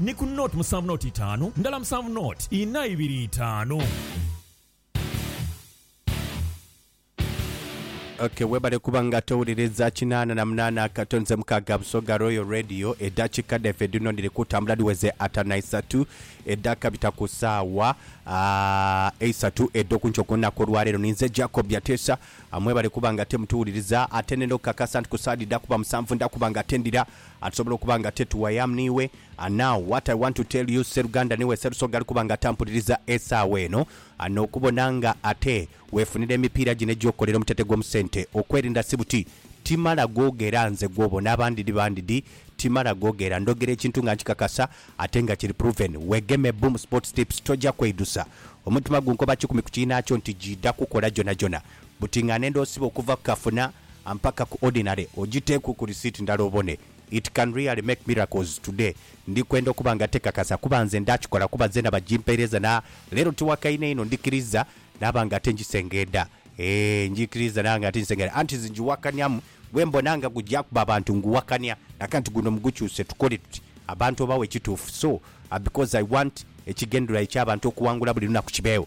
Ni ku nought musanvu nought itaanu ndala musanvu nought inha ibiri itaanu. Ok webale kuba nga towuliriza kinaana na munaana akato nze mukaaga Busoga Royal Radio edakika dhaife dhino dhiri kutambula dhiweze atano naisatu edhakabita ku saawa eisatu edhokunkyo kulunaku olwaleero ninze Jacob Byatesa mwebale kuba nga ate mutuwuliriza ate nenda okukakasa nti ku saadi dhakuba musanvu ndakuba nga ate ndira Ati tusobola okuba nga ate tu I am niwe and now what I want to tell you Sseruganda niwe Sserusoga ali kuba nga atampuliriza esaawa eno and okubona nga ate wefunira emipiira gino egy'okukolera omutete gw'omu ssente okwerinda si buti timala googera nze gw'obona abandi di bandi di timala googera ndhogera ekintu nga nkikakasa ate nga kiri proven wegeme Boom Sports Tips tojja kweidusa omutima gunkoba kikumi ku kiinaakyo nti giidha kukola gyonagyona Buti nga nenda osiba okuva ku kafuna mpaka ku ordinary ojiteeku ku receipt ndala obone it can really make miracles today ndi kwenda okuba nga tekakasa kuba nze ndakikola kuba zena bajimpeereza na leero tiwakaine inho ndikiriza naba nga ate njisengeeda eeh njikiriza naba nga ate njisengeeda anti nze njiwakanyamu gwembona nga gujja kuba abantu nguwakanya nakanti guno mugukyuse tukole tuti abantu obawe ekituufu so because I want ekigendererwa ekyabantu okuwangula buli lunaku kibeewo.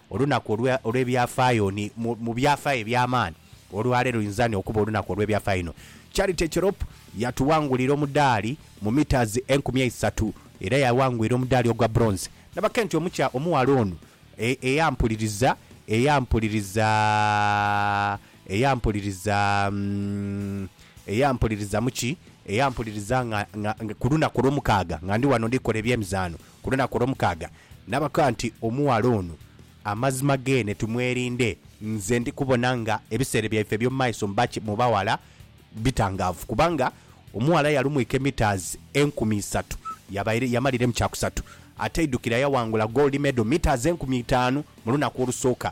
Olunaku olw'ebyafaayo ni mu byafaayo eby'amaani. Olwaleero luinza ni okuba olunaku olw'ebyafaayo inho. Charity Cherop yatuwangulira omudaali mu metres enkumi eisatu era yawangwira omudaali ogwa bronze. Nabake nti omukya omughala ono eyampuliriza, eyampuliriza, eyampuliriza, eyampuliriza mu ki? Eyampuliriza nga, nga, nga ku lunaku olw'omukaaga nga ndi wano ndi kola eby'emizaano, Ku lunaku olwomukaaga n'abakoba nti, Omughala ono amazima geene tumwerinde. Nze ndi kubona nga ebiseera byaife eby'omu maiso mbaki mu baghala bitangaavu, kubanga omughala yalumwika emitaazi enkumi isatu, yabaire yamalire mu kyakusatu. Ate aidukira yaghangula goldi medal mitaazi enkumi itaanu mu lunaku olusooka.